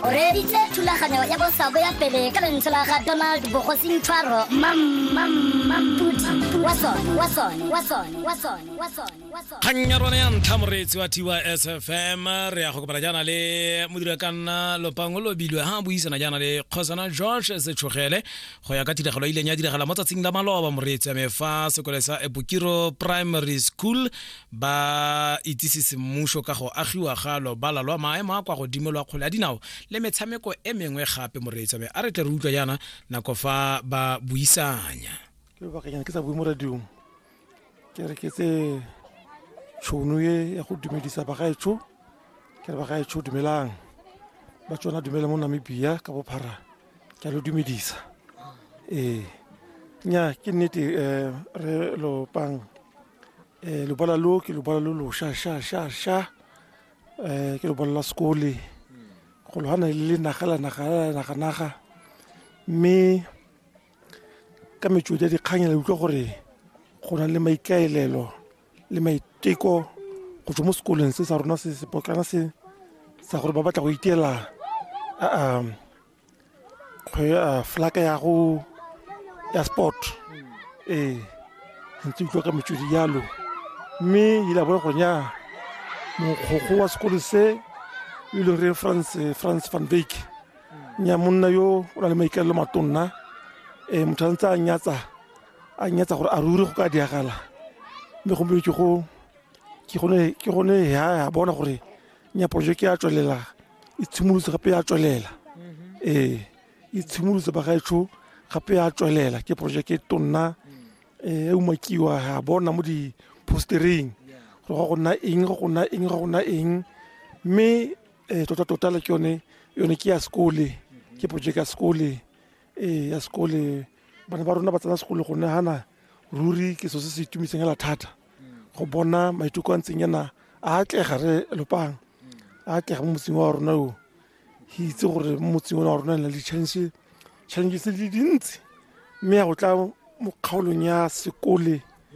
o reeditse thulaganyo ya bosabo ya pele ka lentswe la ga donald bogosing tshwaro kgang ya rone ya ntlha moreetsi wa tiwa sfm re ya go kopana jaana le modira ka nna lopango lobilwe ha buisana jaana le kgosana george setshogele go ya ka tiragalo e ileng ya diragala mo tsatsing la maloba moreetsi ame fa sekole sa ebokiro primary school ba itsise semmuso ka go agiwa ga lobala lwa maemo a kwa godimo lwa kgole ya dinao le metshameko e mengwe gape moreetsa me a re tle re utlwa jaana nako fa ba buisanya ke lobakanyana ke sa bue mo radiong ke re ke tse tšhono e ya go dumedisa bagaetsho ke re bagaetsho dumelang ba tsona dumela mo namibia ka bophara ke a lo dumedisa ee nya ke nnete um re lopang Eh, lobala lo ke lobala lo losha sha sha sha eh ke lobala la sekole go logana le le naga la naga la naga naga mme ka metswedi ya dikgang la utlwa gore go na le maikaelelo le maiteko go tswa mo sekolong se sa rona se sepotlana se sa gore ba batla go iteela a a flaka ya go ya sport ee ntse utlwa ka metswedi yalo mme ile a bona gore nya mogokgo wa sekolo se e leng re france france van bake nya monna yo o na le maikalelo matonna um motho a ntse a nyatsa a nyatsa gore a ruri go ka diagala mme gompieno ke go ke gone ya bona gore nya porojeke ya tswelela e tshimolotse gape ya tswelela ee e tshimolotse bagaetsho gape ya tswelela ke porojeke e tonna e umakiwa ya bona mo di-postereng gore go go nna eng go go nna eng go go nna eng mme um tota-tota le ke yone yone ke ya sekole ke porojeke ya sekole ee ya sekole bana ba rona ba tsena sekole go nagana ruri ke so se se itumetseng hela thata go bona maiteko a ntseng yana a atlega re lopang a atlega mo motseng wa rona o ke itse gore mo motseng wa rona na le challenge challenge tse di dintsi mme ya go tla mo kgaolong ya sekole